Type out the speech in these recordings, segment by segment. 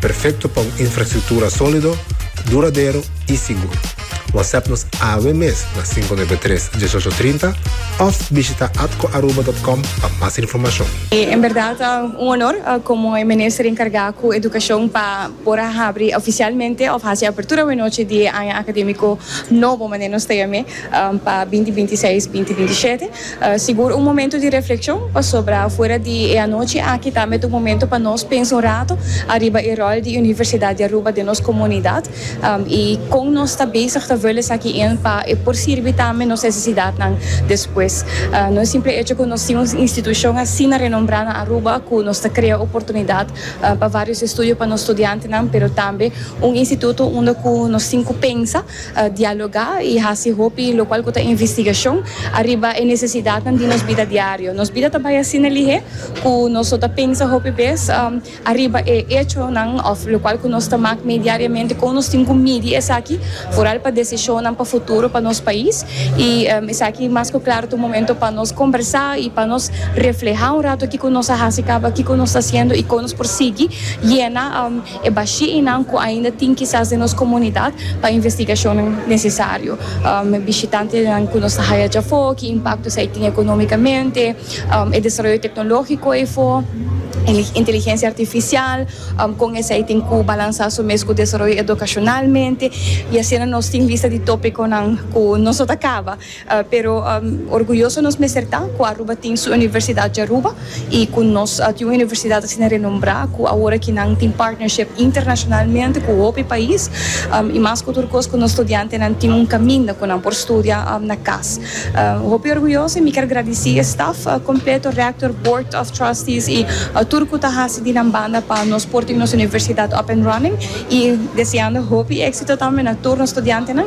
Perfecto pa un infrastructura solido, duradero y sigur. WhatsApp nos awe mes na cinco nuebe tres, dieshocho trinta of bishita atcoaruba.com pa mas informacion. E en berdad ta un honor como e Minister encarga cu Educacion pa por a habri oficialmente of haci apertura awenochi di e aña academico nobo manera nos ta yam'e pa binti binti seis, binti binti shete. Sigur un momento di refleccion, pasobra afuera di e anochi aki ta mete un momento pa nos pensa un rato ariba e rol di Universidad di Aruba den nos comunidad y con nos ta bezig ta vul esaki in pa e por sirbi tambe nos necesidadnan despues. No e simple hecho cu nos tin un institucion asina renombra na Aruba cu nos ta crea oportunidad pa varios estudio pa nos studiantenan pero tambe un instituto unda cu nos tin cu pensa dialogá i hasi hopi lokual ku ta investigashon ariba e nesesidatnan di nos bida diario. Nos bida ta bai asina lihé ku nos lo ta pensa hopi bes ariba e echonan òf lokual ku nos ta mak mee diariamente kon nos tin ku midi esaki foral pa desishonnan pa futuro pa nos pais i esaki mas ku klar ta un momento pa nos kombersá i pa nos reflehá un ratu kiko nos a hasi kaba kiko nos ta hasiendo i kon nos por sigui yena. e bashiinan ku ainda tin kisas den nos komunidat pa investigashonnan nesesario, bishitantenan ku nos ta haya dja afó, ki impakto esei tin ekonómikamente, e desaroyo teknológiko efó, e inteligensia artifisial, kon esei tin ku balansá su mes ku desaroyo edukashonalmente, i asina nos tin lista di tópikonan ku no so ta kaba. Pero orguyoso nos mester ta ku Aruba tin su universidat di Aruba i ku nos tin un universidat asina renombrá ku awor aki nan tin partnership internashonalmente ku hopi pais i mas ku tur kos ku nos studiantenan tin un kaminda ku nan por studia na kas. Hopi orguyoso i mi kier gradisí e staf kompleto, rector, board of trustees i tur ku ta hasi di nan banda pa nos por tin nos universidat up and running i deseando hopi éksito tambe na tur nos studiantenan.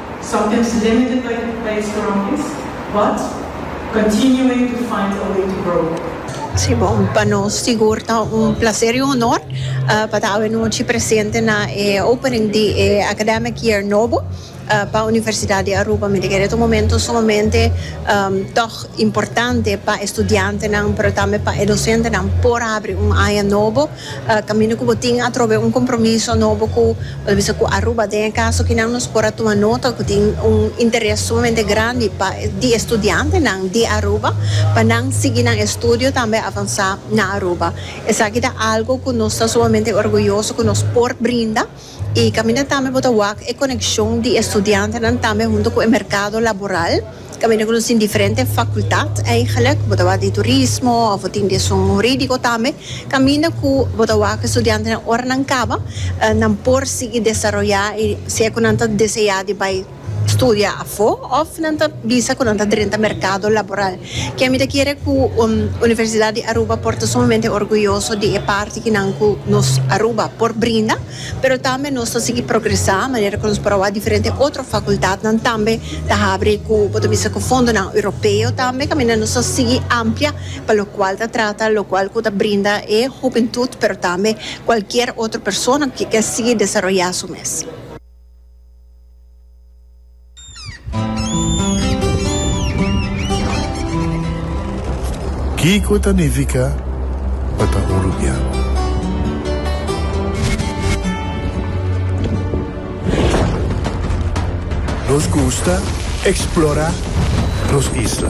Sometimes limited by the place around this but continuing to find a way to grow. Si bon, pa nos sigur ta un placer y un honor pa ta awenochi presente na e opening di e academic year nobo pa Universidad di Aruba. Mi ta kere ta un momento sumamente tog importante pa e studiantenan pero tambe pa e docentenan por habri un aña nobo Kaminda ku bo tin atrobe un kompromiso nobo ku por bisa ku Aruba den e kaso kinan nos por a tuma nota ku tin un interes sumamente grandi pa di e studiantenan di Aruba pa nan sigui nan estudio tambe avansá na Aruba. Esaki ta algu ku nos ta sumamente orguyoso ku nos por brinda. I kaminda tambe bo ta wak e konekshon di e studiantenan tambe huntu ku e merkado laboral, kaminda ku nos tin diferente fakultat eigelik, bo ta wak di turismo òf bo tin di esun hurídiko tambe, kaminda ku bo ta wak e studiantenan ora nan kaba nan por sigui desaroyá i si e ku nan ta deseá di bai. studia afó òf nan ta bisa ku nan ta drenta merkado laboral. Ke mi ta kere ku Universidat di Aruba por ta sumamente orguyoso di e parti ki nan ku nos Aruba por brinda, pero tambe nos ta sigui progresá manera ku nos por a wak diferente otro fakultatnan tambe ta habri ku bo ta bisa ku fondonan europeo tambe kaminda nos ta sigui amplia pa lokual ta trata lokual ku ta brinda e hubentut pero tambe kualkier otro persona ku ke sigui desaroyá su mes. Kiko ta nifica pa ta un rubian? Nos gusta explora nos isla.